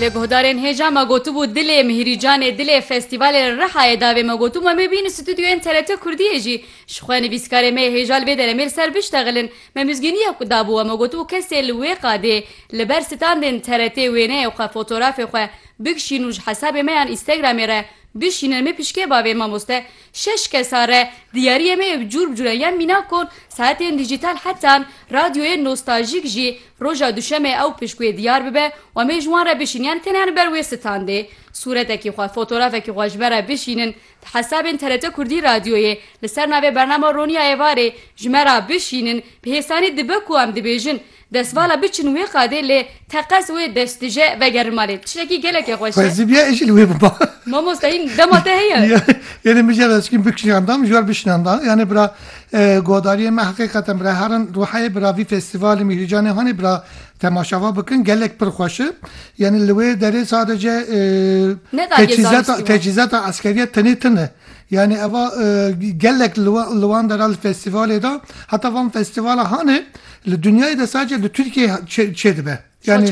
Lê guhdarên hêja me gotibû dilê mihîrîcanê, dilê festîvalê li Rihayê davê me gotibû em ê bînin stûdyoyên TRT Kurdiyê jî ji xwe nivîskarê me yê hêja li vê derê me li ser biştexilin. Me mizgîniyek ku dabû we me gotibû kesê li wê qadê li ber standên TRT wêneyê xwe fotorafê xwe bikşîn û ji hesabê me yan Instagramê re bişînin em ê pişkê bavê mamoste Şeş kesa re diyariyê me yê bi cûr bi cûran ya mînakon, saetên dîjîtal hetan radyoyên nostaljîk jî roja duşemê ew pişt wê diyar bibe û em ê ji wan re bişînin yanî teneya li ber wê standê sûretekî xwe, fotografekî xwe ji ber re bişînin di hesabên TRT Kurdî radyoyê li ser navê bernama Roniya Êvarê ji me re bişînin bi hêsanî dibe ku em dibêjin Destvala biçin wê qadê lê teqez wê destije vegerin malê. Tiştekî gelekê xweş e. Xwezî bîya êjî li wê biba. Mamoste hîn dema te heye. Yanê min jî ev eskîm bikşînan da min jî war bişînan da. Yanê bira guhdariyên me heqîqeten bira herin ruheyê bira vî festivalê Mîhrîcanê hanê bira temaşava bikin gelek pir xweş e. Yanê li wê derê sadece Ne da gê tecîzata zanistî wan. tecîzata eskerîya tenê tune. Yanê eva gelek li wan li wan dera li festivalê da heta van festivala hanê Li dinyayê de sadece li Tirkiyeyê çêdibe. Yani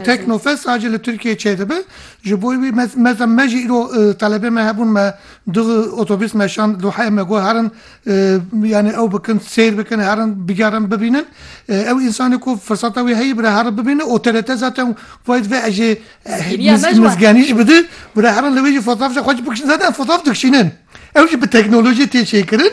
teknofes sadece li Tirkiyeyê çêdibe. Ji bo wî meza me jî îro telebê me hebûn me di otobîs me şand Dohayê me got herin yani ew bikin sêr bikin herin bigerin bibînin. Ew însanê ku firseta wî heye bira herin bibîne û TRT zaten wayît ve ez jê mizgenî jî bidin bira herin li wê jî fotoğraf jî xwe jî bikişînin. Zaten fotoğraf dikişînin. Ew jî bi teknolojiyê tê çêkirin.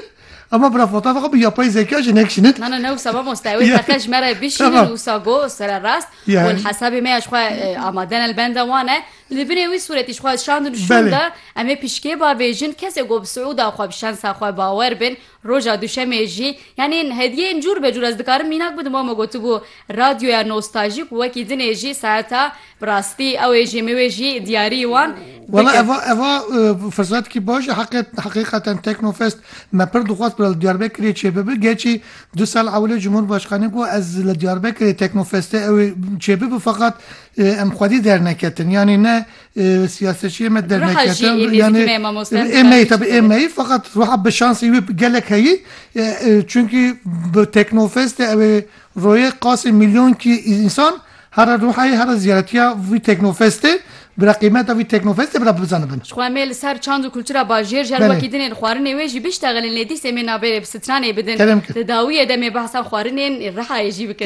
Ama bira fota fakat bu yapay zeka jine kişinit. Na na ne wisa mamoste ew teqe ji me re bişînin wisa go sere rast û li hesabê me ya ji xwe amade ne li benda wan e li binê wî sûretî ji xwe şandin û şûn de em ê pişkê bavêjin kesê ku bi siûda xwe bi şensa xwe bawer bin roja duşemê jî yanî hediyeyên cûr be cûr ez dikarim mînak bidim wama gotibû radyoya nostajî ku wekî dinê jî saeta Bi rastî ew ê jî min wê jî diyarî wan Wela bikin. eva eva e, firsatkî baş e heqê heqîqeten Teknofest me pir dixwast bila li Diyarbekirê çêbibi. Gerçî du sal ewilê Cumhurbaşkanê got ez li Diyarbekirê Teknofestê ew ê çêbibi feqat e, em xwedî derneketin. Yanî ne e, siyasetçiyê me derneketin. jî êmê yanî dikine e, mamoste êmeyî Ziraviçî tabi de. êmeyî feqat ruha bi şansî wî gelek heyî e, e, çunkî bi Teknofestê ew ê royê qasî milyonkî însan Here ruhê here ziyaretiya vî teknofestê bira qîmeta vî teknofestê bira bizanibin. Jixwe em ê li ser çand û kultura bajêr ji ber wekî din ên xwarinê wê jî biştexilin lê dîs em ê navê rê bi stranê bidin. Li dawiyê de em ê behsa xwarinên rihayê jî bikin.